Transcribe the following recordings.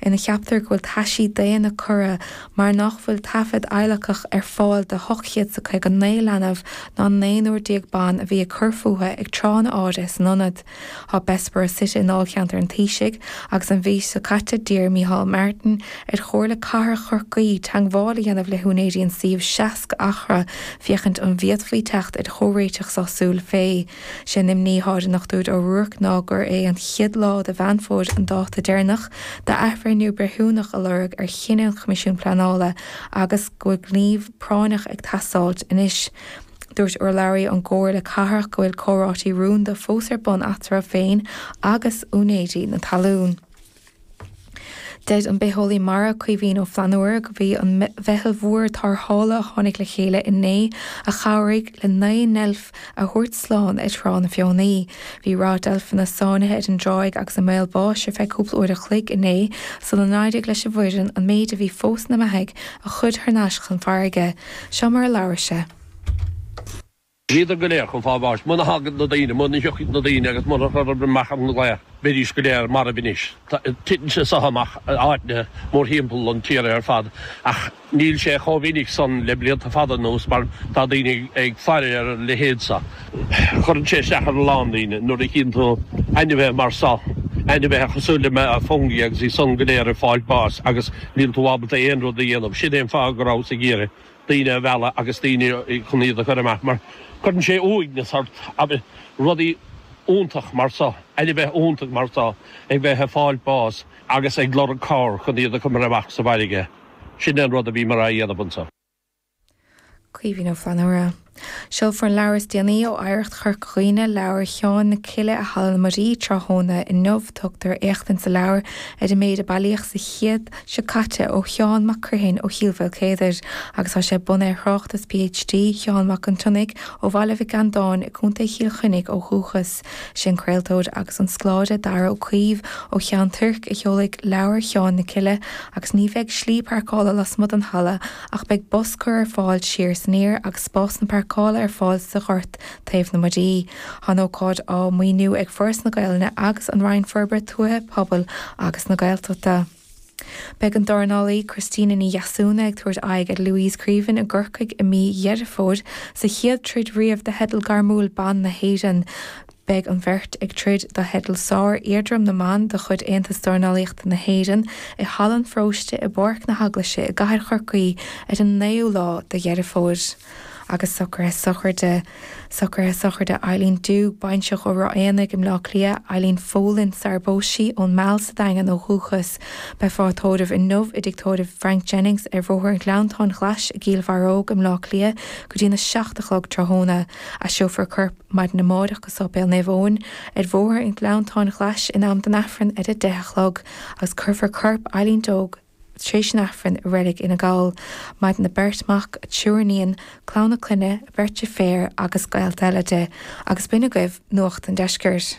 ina cheaptar go bhfuil taisí daonna curtha mar nach bhfuil taifead adhlactha ar fáil de hocht gcéad 's a caoga naoi leanbh ná naonúr déag ban a bhí ag cur fúthu ag tráthanna áirithe san ionad. Tá Bessborough suite i ndáilcheantar an Taoisigh agus an mhí seo caite d'iarr Micheál Martin ar Chomhairle Cathrach Chorcaí teagmháil a dhéanamh le húinéirí an suíomh seasca acra féachaint an bhféadfaí teacht ar chomhréiteach sásúil fé Sé an imní atá ar an nDochtúir Ó Ruairc ná gur é an chéad lá de Mheán Fómhair an dáta deireanach d'athbhreithniú breithiúnach a lorg ar chinneadh an Choimisiúin Pleanála agus go bhfuil gníomh práinneach ag teastáilt anois. Dúirt urlabhraí ón gComhairle Cathrach go bhfuil comhráití rúnda fós ar bun eatarthu féin agus úinéirí na talún. Deir an bitheolaí mara Caoimhín Ó Flannúra gurb é an mheitheal mhór tarrthála a tháinig le chéile inné a chabhraigh le naoi ndeilf a thabhairt slán ag Trá na Feothanaí. Bhí ráth deilfeanna sáinnithe ar an dtráigh agus i mbaol báis ar feadh cúpla uair an chloig inné sula n-éirigh leis an bhfoireann an méid a bhí fós ina mbeathaidh a chur thar n-ais chun farraige. Seo mar a labhair sé. Bhíodar go léir chun fáil bháis. Muna thagann na daoine, muna thiocfadh na daoine agus iad a chur amach ar an gclaí, beidís go léir marbh anois. Titeann sé so amach in áiteanna mórthimpeall an tíre ar fad ach níl sé chomh minic san le blianta fada anuas mar tá daoine ag faire ar a leithéid seo. Cuireann sé isteach ar a lán daoine nuair a chíonn tú ainmhithe mar so, ainmhithe cosúil le Fungi agus iad san go léir ag fáil báis agus níl tú ábalta aon rud a dhéanamh. Sin é an fáth go rabhas ag iarraidh. daoine a mhealladh agus daoine chun iad a chur amach mar cuireann sé uaigneas ort abair rudaí iontach mar so, ainmhithe iontach mar so, ag bheith ag fáilt bás agus ag lorg cabhair chun iad a choimeád amach sa bhfairrge. Sin é an rud a bhíomar a' dhéanamh anso. Caoimhín Ó Flannúra. Seolfar an leabhar is déanaí ó Oidhreacht Chorca Dhuibhne, Leabhar Sheáin na Cille i Halla na Muirí tráthnóna inniu. Tugtar éachtaint sa leabhar ar an méid a bailíodh sa chéad seo caite ó Sheán Mac Criomhthain ó Chill Mhaoilchéadair agus tá sé bunaithe ar thráchtas PhD Sheáin Mhac an tSionnaigh ó Bhaile Mhic Andáin i gContae Chill Chainnigh ó dhúchas. Is é an craoltóir agus an scoláire Darragh Ó Caoimh ó Cheann Tuirc a sheolfaidh Leabhar Sheáin na Cille agus ní bheidh slí pairceála lasmuigh den halla Ach beidh bus cur ar fáil siar is aniar agus spásanna páirceála ar fáil sa ghort taobh na Muirí. Tá an ócáid á maoiniú ag Foras na Gaelainne agus An Roinn Forbartha Tuaithe, Pobail agus na Gaeltachta. Beidh an dornálaí Christina Ní Dheasúna ag tabhairt aghaidh ar Louise Creaven i gCorcaigh i mí Dheireadh Fómhair sa chéad troid riamh do theideal gairmiúil ban na hÉireann. beidh an bheirt ag troid do theideal sár-éadrom na mban de chuid Aontas Dornálaíochta na hÉireann i Halla an Pharóiste i bPáirc na hEaglaise i gCathair Chorcaí ar an 9ú lá de Dheireadh Fómhair. Agus socruithe sochraide socruithe sochraide Eileen Doogue, baintreach ó Ráth Éanaigh i mBleá Cliath, Eileen Folan, sar a bpós sí, ón Meal sa Daingean ó dhúchas, beifear á tórramh inniu i dTig Tórraimh Frank Jennings ar Bhóthar an Ghleanntáin Ghlais i gCill Bharróg i mBleá Cliath go dtí'n 7 a chlog tráthnóna. Aistreofar a corp. Maidin amáireach go Sáipéal Naomh Eoin ar bhóthar an Ghleanntáin Ghlais in am don Aifreann ar a deich a chlog agus cuirfear corp Eileen Doogue tar éis an Aifrinn i Reilig Fhine Gall. Maireann a beirt mac, a triúr iníon, clann a clainne, beirt deirféar agus gaolta eile di. Agus b'in agaibh Nuacht an Deiscirt.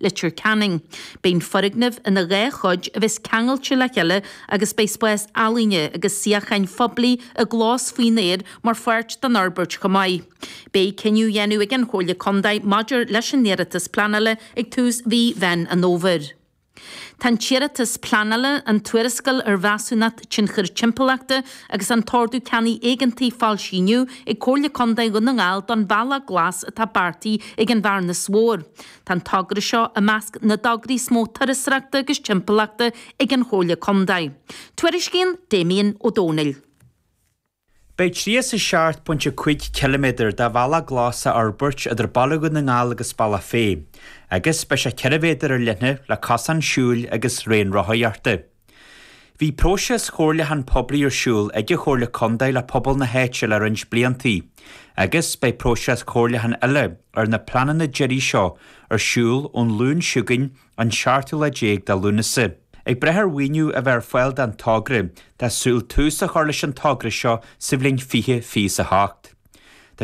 Leitir Ceanainn. Beidh an foirgneamh ina dhá chuid a bheas ceangailte le chéile agus beidh spás ealaíne agus suíocháin phoiblí i gclós faoin aer mar pháirt den fhorbairt chomh maith. Beidh cinneadh á dhéanamh ag an Chomhairle Contae maidir leis an iarratas pleanála ag tús mhí Mheán an Fhómhair. Tá an t-iarratas pleanála, an tuarascáil ar Mheasúnacht Tionchair Timpeallachta agus an tOrdú Ceannaigh Éigeantaigh foilsithe inniu ag Comhairle Contae Dhún na nGall don bhealach glas atá beartaithe ag an Bhearnas Mhór. Tá an togra seo i measc na dtograí is mó turasóireachta agus timpeallachta ag an Chomhairle Contae. Tuairiscíonn Damien Ó Dónaill. Beidh tríocha is a seacht pointe a cúig ciliméadar de bhealach glas á fhorbairt idir Baile Dhún na nGall agus Bealach Féich, agus beidh sé ceithre mhéadar ar leithne le cosán siúil agus raon rothaíochta. Bhí próiseas chomhairliúcháin poiblí ar siúl ag an Chomhairle Contae le pobal na háite le roinnt bliantaí, agus beidh próiseas comhairliúcháin eile ar na pleananna deiridh seo ar siúl ón Luan seo chugainn, an seachtú lá déag de Lúnasa. Ag brath ar mhaoiniú a bheith ar fáil don togra, tá súil tús a chur leis an togra seo sa bhliain 2028. Tá.